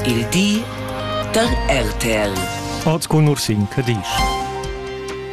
il di da RTL. Oz cun Ursin Cadisch.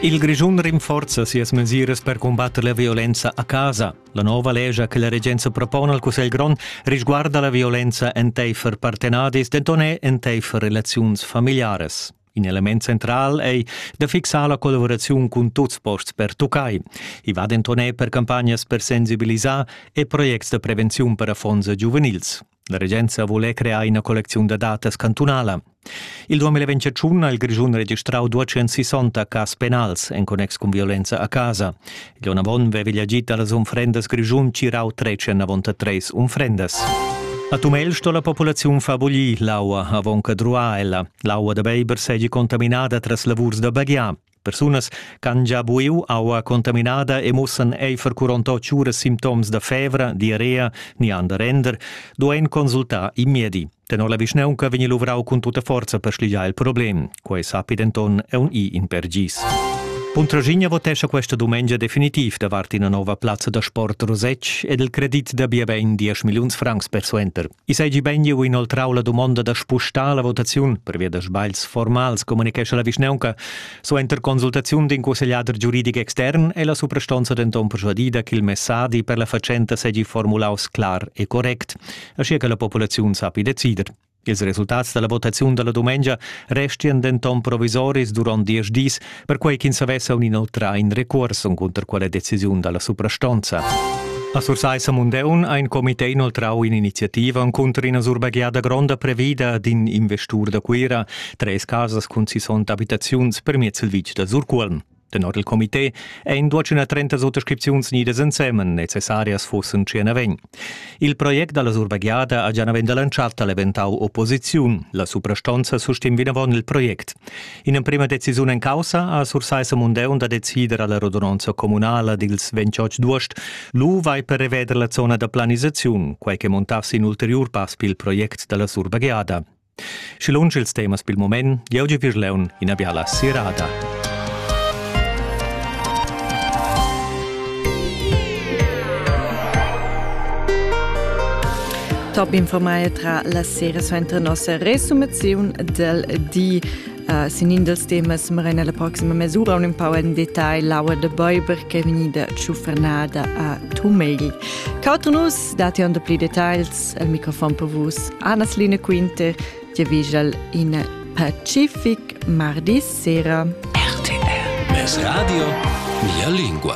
Il Grischun rinforza sias mesiras per combatter la violenza a casa. La nova legia che la regenza propone al Cussegl grond risguarda la violenza enteifer partenadis, denton è enteifer relaziuns familiares. In element central ei da fixar la collaboraziun cun tuts posts per tuccai. I va denton per campagnas per sensibilisar e projects da prevenziun per affons giuvenils. La regenza vole crear ina collecziun da datas cantunala. Il 2021 ha il Grischun registrau 260 cas penals en connex cun violenza a casa. Il onn avon vevigl agit dallas unfrendas Grischun cirau trecen avonta treis unfrendas. A Tumel sto la populaziun far buglì l'aua avon che druà ella. L'aua da beiber seigi contaminada tras lavurs da baghiar. Persunas ch'han gia buiu aua contaminada e mussan eifer curonta tschura simptoms da fevra, diarrea ni han da render, duein consultar il miedi. Tenor la vischnaunca vegni luvrau cun tutta forza per schligiar il problem. Quei sappi denton aunc in per gis. Puntraschigna votescha questa dumengia definitiv davart ina nova plazza da sport Rosetsch ed il credit da bia bein 10 milliuns francs persuenter. I seigi beiniu inoltrau la dumonda da spustar la votaziun pervia da sbagls formals, communechescha la vischnaunca. Suenter consultaziun d'in cussegliader giuridic extern è la suprastonza denton persuadida ch'il messadi per la fatschenta seigi formulaus clar e correct, aschia che la populaziun sappi decider. Ils resultats dalla votaziun dalla dumengia restian denton provisoris duront diesch dis, perquai ch'ins avess aun inoltrà in recuors encunter quella decisiun da la suprastonza. A Sursaissa Mundeun ha in comité inoltrau in'iniziativa encunter ina surbagliada gronda previda d'in investur da Cuira, treis casas cun sissont abitaziuns per miez il vitg da Surcuolm. Tenor il comité ein duatschuna trentas otterscripziuns nidas ensemen necessarias fussen tschien a vegn. Il project dalla surbagliada ha gia naven dalla entschatta leventau opposiziun. La suprastonza sustim vinavon il project. In'emprema decisiun en caussa ha Sursaissa Mundeun da decider alla rodononza communala dils 28 d'uost. Lu vai per reveder la zona da planisaziun, quei che montassi in ulteriur pass pil project dalla surbagliada. Schi lunsch ils temas pil moment, jeu gi vir leun ina biala sirada. Top informai tra la sera suenter nossa resumaziun del di. Uh, sin in dels temas marina la proxima mesura un empau en detail l'aua de Bäuber che è vegnida tschufernada a Tumegl. Cauter nus dati on de pli details Mats al microfon per vus. Anna-Line Quinte, Ti vigel in Pacific mardi sera. RTR. Mes radio, mia lingua.